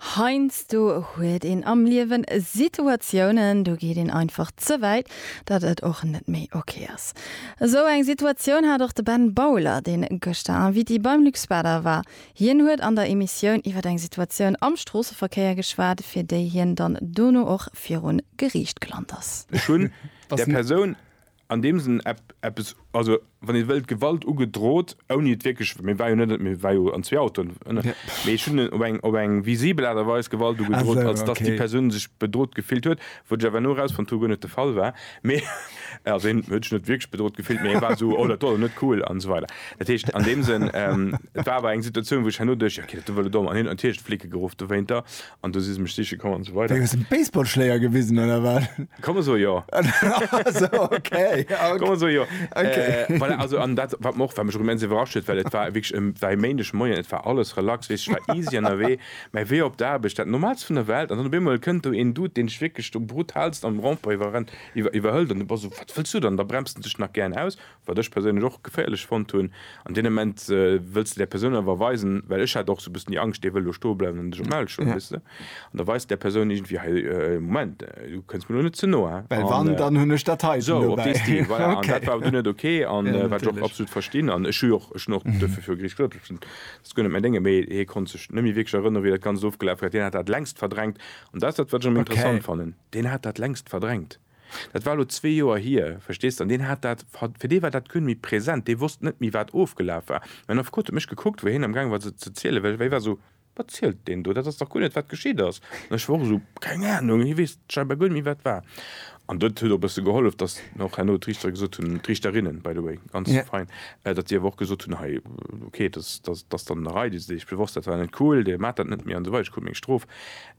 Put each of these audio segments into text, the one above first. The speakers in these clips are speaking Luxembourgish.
Heiansdo huet een am Liewen Situatiounen, do geet een einfach ze wäit, datt et och net méi ok ass. Esou eng Situatioun hat och de Ben Bauler, deen gëschter Invité beim Luxwater war. Hien huet an der Emissioun iwwer eng Situatioun am Stroosseverkéier geschwat, fir déi hien dann dono och virun Geriicht gelant ass. Ech hunn der Persoun an deem Sënn eppes, also wann een wëllt, Gewalt ugedrot, ouni et wierklech, mee war jo net, et war jo an zwee Autoen, mee ech hunn op eng, op eng visibel Aart a Weis Gewalt ugedrot, als datt déi Persoun sech bedrot gefillt huet, wou ech awer elo erausfonnt hu, guer net de Fall war, mee also hien huet sech net wierklech bedrot gefillt, mee hie war esou, oh dat war elo net cool an esou weider. Dat heescht an deem Sënn, et war awer eng Situatioun, wou ech herno duecht, jo, okay, dat war elo domm, an hien huet natierlech d'Flicke geruff dowéinter, An do si se mech siche komm an esou weider. Wéi, hues de Baseballschléier gewisen oder wat? Ka mer soe jo. Sou, okay, ok. Ka mer soe jo. Ok. Voilà, also an dat wat mer och, wat mech och immens iwwerrascht huet, well et war wierklech e, war e Méindeg Moien, et war alles relax, weess, ech war easy ënnerwee, mä wéi op der Aarbecht, dat Normaalst vun der Welt an dann op eemol kënnt do een Dude, deen dech wierklech do brutalst am Rond-point iwwerrennt, iwwer, iwwerhëlt an du bass esou, wat wëlls du dann? Da bremst en dech nach gären aus. wat ech perséinlech och geféierlech fonnt hunn, an deem Ament wëlls de där Persoun awer weisen, well ech hat och sou e bëssen déi Angscht, dee wëll elo stoe bleiwen an dech um Hals schloen, weess de, an da weis de där Persoun iergendwéi, hei, Moment, du kënns mir elo net ze no, hein. Well wann, dann hunn ech dat heiten dobäi. Sou, op dee Stil, voilà. An dat war awer dunn net ok, an wat ech och absolut verstinn, an ech hu jo och, ech hunn och duerfir viru Gericht gesot, ech hunn dat guer net mäin Déngen, mee hie konnt sech net méi wierklech erënnere wéi dat Ganzt ofgelaf war, deen hat dat längst verdrängt, an dat ass dat, wat ech am interessant fannen, deen hat dat längst verdrängt. Dat war elo zwee Joer hier, verstees de, an deen hat dat, fir dee war dat guer net méi present, dee wosst net méi, wat ofgelaf war. Mäin Affekot huet mech gekuckt, wou hien amgaange war ze zielen, well hie war esou, Wat zielt deen do? Dat ass dach guer net, wat geschitt ass. An ech war och esou, Keng Anung, hie weess scheinbar guer net méi, wat war. An dat huet och e bësse gehollef, datt mir och herno d'Riichter gesot hunn, d'Riichterinnen, by the way, ganz fein, datt déi awer och gesot hunn, Hei, okay, dat ass dann en Erei, dee se deeg bewosst, dat war net cool, Dir maacht dat net méi an esou weider, Dir krut meng Strof.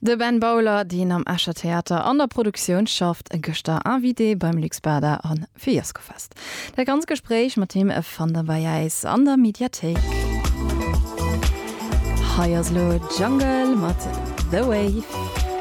De Ben Bowler, deen am Escher Theater an der Produktioun schafft, gëschter Invité beim Lux Bada a fir Jazzgefest. Dat ganzt Gespréich mat him fannt der bei äis an der Mediathéik. Hei ass elo Jungle mat The Wave.